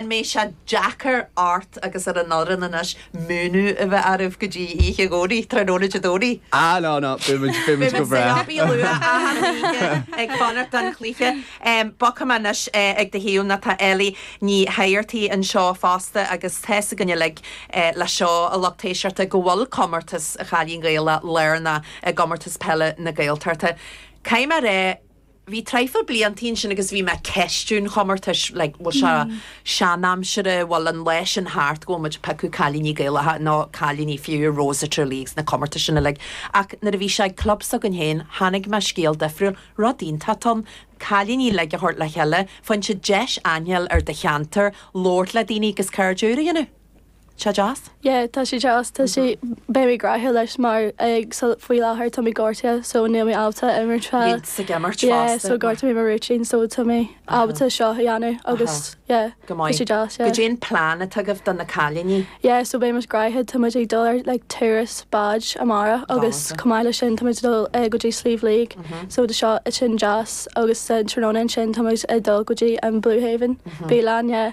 An mbeidh sé deacair ort agus ar an fhoireann anois múineadh a bheith oraibh go dtí oíche dhomhnaigh, tráthnóna Dé Domhnaigh? Ah no no, beidh muid, beidh muid go breá. Beidh muid saor a luí luath achan oíche ag fanacht don chluiche. Bogfaidh mé anois ag do thaobh, tá Ellie Ní hAirtigh anseo fosta agus tá a fhios againn uilig, lucht éisteachta, go bhfuil comórtas an Chailín Gaelach lárnach i gComórtas Peile na Gaeltachta. Caithfidh mé a rá bhí traidhfil blianta ansin agus bhí mé ag ceistiú an chomórtais, like bhfuil sé seanaimseartha, bhfuil an lá sin thart go bhfuil muid ag piocadh cailíní Gaelacha, nó cailíní for Rose of Tralee agus na comórtais sin uilig. Ach nuair a bhí sé ag club s'againn féin, chonaic mé scéal difriúil, rud iontach atá ann, cailíní uilig a thabhairt le chéile, faigheann siad deis insint ar do cheantar, labhairt le daoine agus cairde úra a dhéanamh. sé deas? Yeah tá sé deas tá sé beidh mé graithe leis mar ag súil faoi láthair tá mé gortaithe so níl mé ábalta imirt fá Iad sa gceimirt yeah fosta so mar ghortaigh mé mo rúitín so tá mé ábalta seo a dhéanamh agus yeah go maith tá sé deas yeah goidé an plean atá agaibh do na cailíní? yeah so beidh muid graithe tá muid ag dul ar like turas báid amárach agus Rannata. chomh maith leis sin tá muid ag dul eh, go dtí Sliabh Liag so beidh sé sin deas agus sa tráthnóna ansin tá muid ag dul go dtí an Blue Haven béile yeah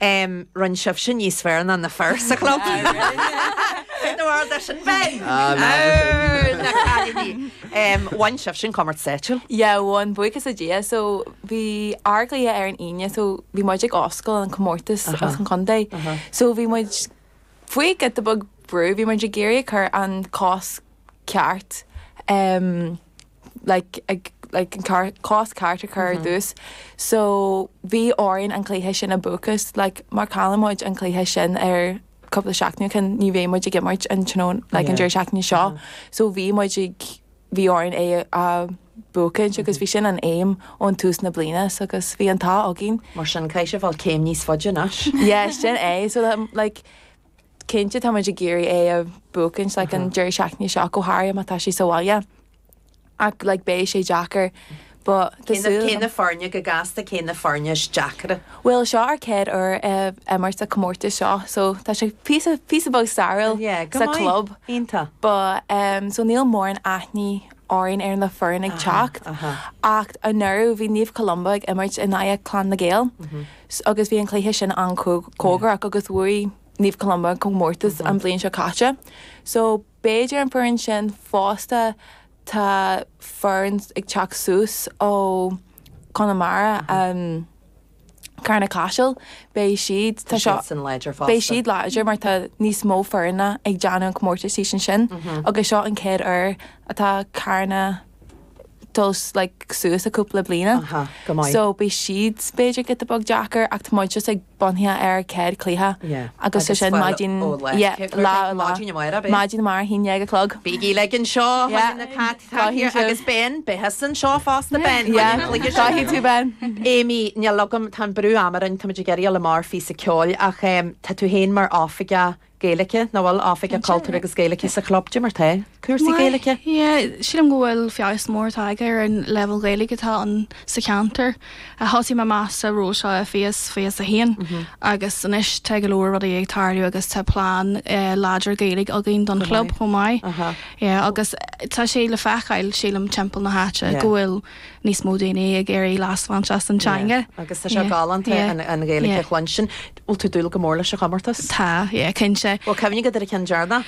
Em, rinne sibh sin níos fearr ná na fir sa chlub! Ah, rinne! Ní bhfuair de sin féin! Ah, ná de sin. Arr, na cailíní! Em, bhain sibh sin comórtas áitiúil? Yeah, bhain, buíochas le Dia. So, bhí ár gcluiche ar an Aoine, so bhí muid ag oscailt an comórtas as an chontae. So, bhí muid faoi giota beag brú, bhí muid ag iarraidh a chur an cos ceart. Em, like, ag, like, an car- cos ceart a chur ar dtús. So, bhí orainn an cluiche sin a bhuachaint. Like, má chaill muid an cluiche sin ar cúpla seachtaine ó shin, ní bheidh muid ag imirt an tráthnóna, like, an Yeah. deireadh seachtaine seo. So, bhí muid ag, bhí orainn é a bhuachaint agus bhí sin an aim ón tús na bliana. So, agus bhí an t-ádh againn. Mar sin, caithfidh sibh a ghabháil céim níos faide anois. Yeah, sin é. So, um, like, Cinnte tá muid ag iarraidh é a bhuachaint like an deireadh seachtaine seo go háirithe mar tá sé sa bhaile ach like beidh sé deacair Cé na foirne go gasta, cé na foirne is deacra? Bhuel seo ár gcéad uair ag imirt sa comórtas seo so tá sé píosa píosa beag stairiúil sa club. But so níl mórán aithne againn ar na foireann ag teacht ach anuraidh bhí Naomh Columba ag imirt in aghaidh Clann na nGael. S, Agus bhí an cluiche sin an-chóngarach agus bhuaigh Naomh Columba an comórtas an bhliain seo caite. So b'fhéidir an foireann sin fosta tá foireann ag teacht suas ó Conamara, Carna Caiseal, beidh siad, tá seo, beidh siad láidir mar tá níos mó foirne ag déanamh an comórtais thíos ansin agus seo an chéad uair atá Carna to's like suas a cúpla bliana. Aha, go maith. So beidh siad b'fhéidir giota beag deacair ach tá muid just ag bunaithe ar céad cluiche Yeah. agus sé Agus sin fuil maidin ó lá. yeah, Cé- lá ó lá. maidin amárach ab é? Maidin amárach a haon déag a chlog. Bígí le an seo Yeah. na cat Go tá hiad sibh. agus Ben beidh tusa anseo fosta Ben Yeah, Tá muid ag go hí tú ben. Amy níl agam tá an brú ama orainn tá muid ag éirí le mar phíosa ceoil ach em, tá tú féin mar oifigeach Gaeilge, nó bhuel oifigeach cultúir agus Gaeilge sa chlub? Cad é mar atá cúrsaí Gaeilge? Yeah, sílim go bhfuil feabhas mór tagtha ar an leibhéal Gaeilge atá ann sa cheantar. Thosaigh mé amach sa ról seo i fiche fiche a haon, agus anois tá go leor rudaí ag tarlú agus tá plean láidir Gaeilge againn don chlub chomh maith. Yeah, agus tá sé le feiceáil, sílim, timpeall na háite go bhfuil. níos mó daoine ag iarraidh leas a bhaint as an teanga. Yeah, agus tá sé galánta an Ghaeilge a chluinstin. Bhfuil tú ag dúil go mór leis an chomórtas? Tá, yeah, cinnte. Bhfuil cuimhne agat ar an cheann deireanach?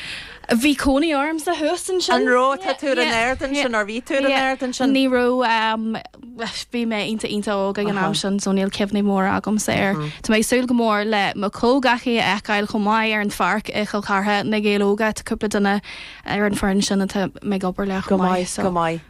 Bhí cónaí ormsa thuas ansin. An raibh? Tá tú ar an aird ansin, nár bhí tú ar an aird ansin? Ní raibh, bhí mé iontach iontach óg ag an am sin so níl cuimhní móra agamsa air. Tá mé ag súil go mór le mo comhghleacaí a fheiceáil chomh maith ar an pháirc i Chill Chartha, na Gaeil Óga, tá cúpla duine ar an foireann sin atá mé ag obair le chomh maith so. Go maith, go maith.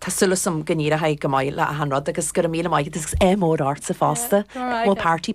Tá súil agam go n-éireoidh go maith le achan rud agus go raibh míle maith agat agus ádh mór ortsa fosta. Go raibh maith agat.